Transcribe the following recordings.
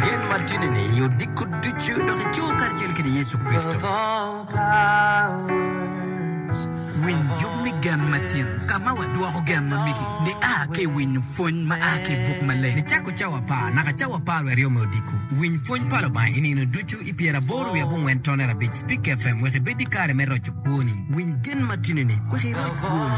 Gen ma tini ni i odiko ducu dok i coo karacel kede Yecu Kricito. Winy yub me gen ma tino. Ka ma wadwoko gen ma migi ni a ki i winyo pwony ma a ki i buk maleng ni cako cawa apar naka cawa apar wiye aryo me odiko. Winy pwony pa Lubanga i nino ducu i pyera aboro wiye abongwen tone arabic. Speak FM wek ibed ki kare me roco kwoni. Winy gen ma tini ni wek iroc kwoni.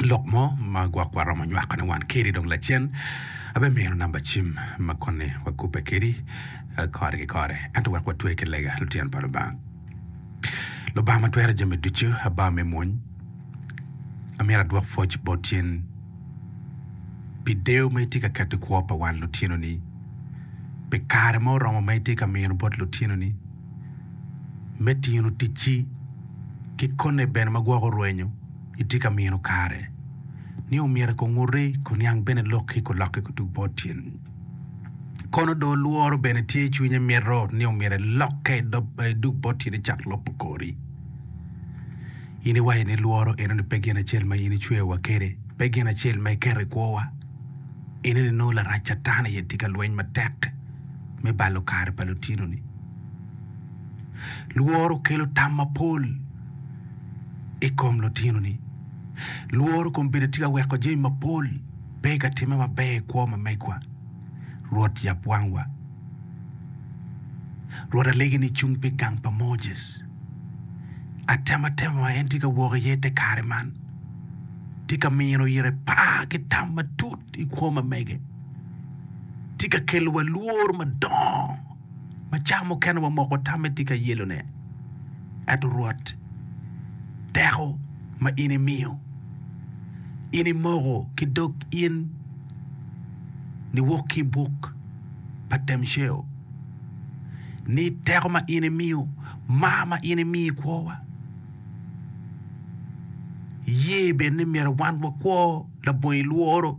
lok mo ma gwok wa romo nywako ne wan keri dong lacen abe mino namba cim ma koni wa kubbe keri kore ki kore ento wek wa twe ki lega lutyen pa Lubanga Lubanga ma twero jami ducu aba me mwony amyero adwok pwoc bot in pi deyo ma itye ka keto i kwo pa wan lutyenoni pi kare ma oromo ma itye ka mino bot lutyenoni me tino ticci ki kone bene ma gwoko rwenyo itye ka mino kare ni omyero kunguti kuniang bene lokki kulokke kudug bot tyen kono do lworo bene tye icwinye mito ni omyero elokke idug bot tyen icak lobo kori in iwaco ni lworo enoni pe gin acel ma in icweyo wa kede pe gin acel ma iketo ikwowa enoni nongo larac catan aye tye ka lweny matek me balo kare pa lutinoni. Lworo kelo tam mapol i kom lutinoni. Lworo kombeddi tye ka weko jami mapol pe ka timme maber i kwo ma megwa. Rwot yab wangwa. Rwot alegi ni cung pi gang pa Moses. Atema tema ma en tye ka wok iye te kare man tye ka mino ire par ki tam matut i kwo ma mege. tye ka kelowa lworo madongo ma cawa mukene wamoko tamme tye ka yelone. Ento Rwot, teko ma in imiyo, in imoko ki dog in niwok ki i buk pa Temceo, ni teko ma in imiyo, mar ma in imiyo i kwowa, iye bene ni myero wan wakwo labongi lworo.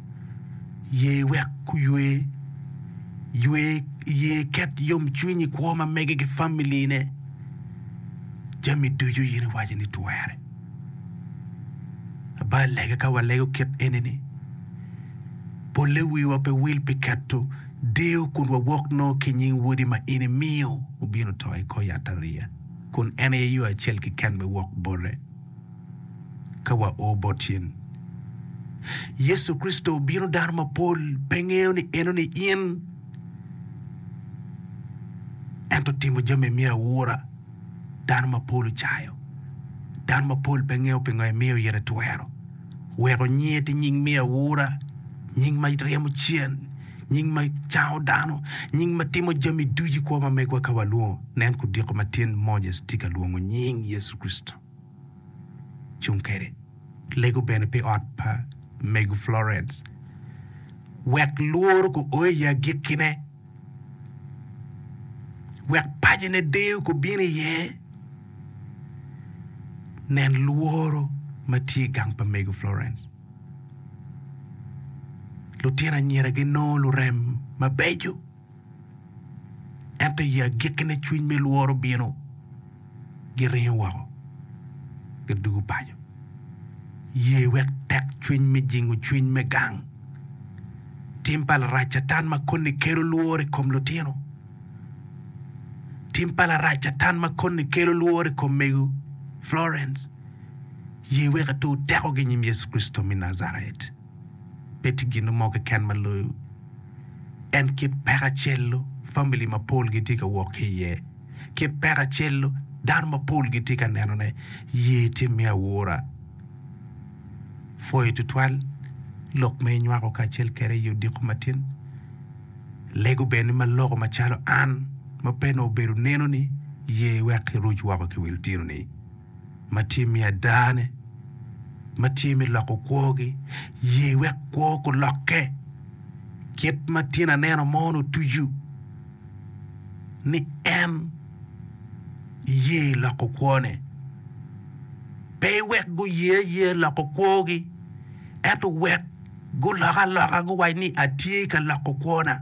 Ye wek guywe. Ywe iye iket yomcwiny i kwo ma mege ki familine. Jami ducu in iwaco ni twere. Abal lega ka walego kit eni-ni, polle wiwa pe wil pi keto deyo kun wawok nongo ki i nying Wodi ma in imiyo obino to i kor yatariya, kun en aye yo acel keken me wok bote. ka wao bot cen. Yecu Kricito obino dano mapol pe ngeyo ni enoni in, ento timo jami emiyo awura. Dano mapol ocayo. Dano mapol pe ngeyo pingo emiyo oyere twero weko nyinge ti nying miyo awura, nying ma ryemo cen, nying ma cango dano, nying ma timo jami ducu i kwo ma megwa ka walwongo. Nen kudiko matin Moses ti ka lwongo nying Yecu Kricito. cung kwede. Lego bene pi ot pa mego Florence wek lworo guo i agikkine, wek pacine deyo gubin iye. Nen lworo ma tye i gang pa mego Florence. Lutino anyira ginongo lurem mabeco. Ento i agikkine cwiny me lworo bino, giringo woko, gidwogo paco. Ye wek tekcwiny me jingo cwiny me gang tim pa Larac Catan ma koni kelo lworo i kom lutino. Tim pa Larac Catan ma koni kelo lworo i kom mego Florence. Ye wek atur tekogi i nyim Yecu Kricito me Najaret. Pe tye gin mo keken ma loyo en kit peko acel-lu famili mapol gitye ka wok ki iye. Kit peko acel-lu dano mapol gitye ka nenone. Ye tye me aura pwoyo tutwal, lok ma inywako kacel kwede i odiko matin, lego bene ma loko macalo an ma pe nongo obedo nenoni. Ye wek iruc woko ki wil tinoni. ma tye me adane ma tye me loko kwogi, ye wek kwo gulokke. Kit ma tyen aneno mon otucu ni en ye loko kwone, pe wek guye ayeya loko kwogi, ento wek gulok aloka guwac ni atye ka loko kwona.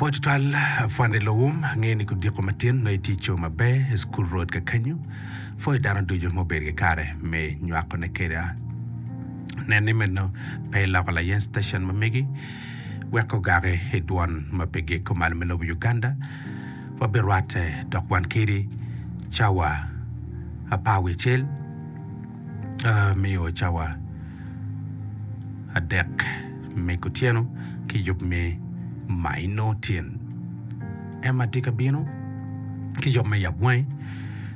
Apwony tutwal afwanda i lowum, angeyo ni kudiko matin nongo itye co maber i school road kakenyo, pwoyo dano ducu ma obedo ki kare me nywako ne keda, nen ni meno pe iloko layen station ma megi wek ogaki i dwon ma pe giko malo me lobo Uganda, wabirwate dok wan kedi cawa apar wiye cel. miyo wa cawa adek me kutyeno ki yub me maino tin ema tye ka bino ki yub me yabwangi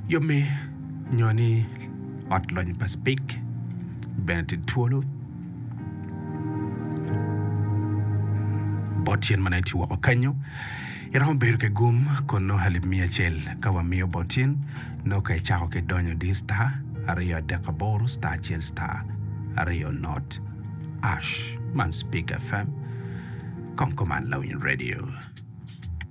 yub me nyo ni ot lony pa cipik bene tye twolo bot tyen ma nongo etye woko kanyo Iromo bedo ki gum kun nongo alip miya acel ka wamiyo bot cen nongo ka icako ki donyo diyo star aryo adek aboro star acel star aryo not ash man speak fm kong kuman lawiny radio.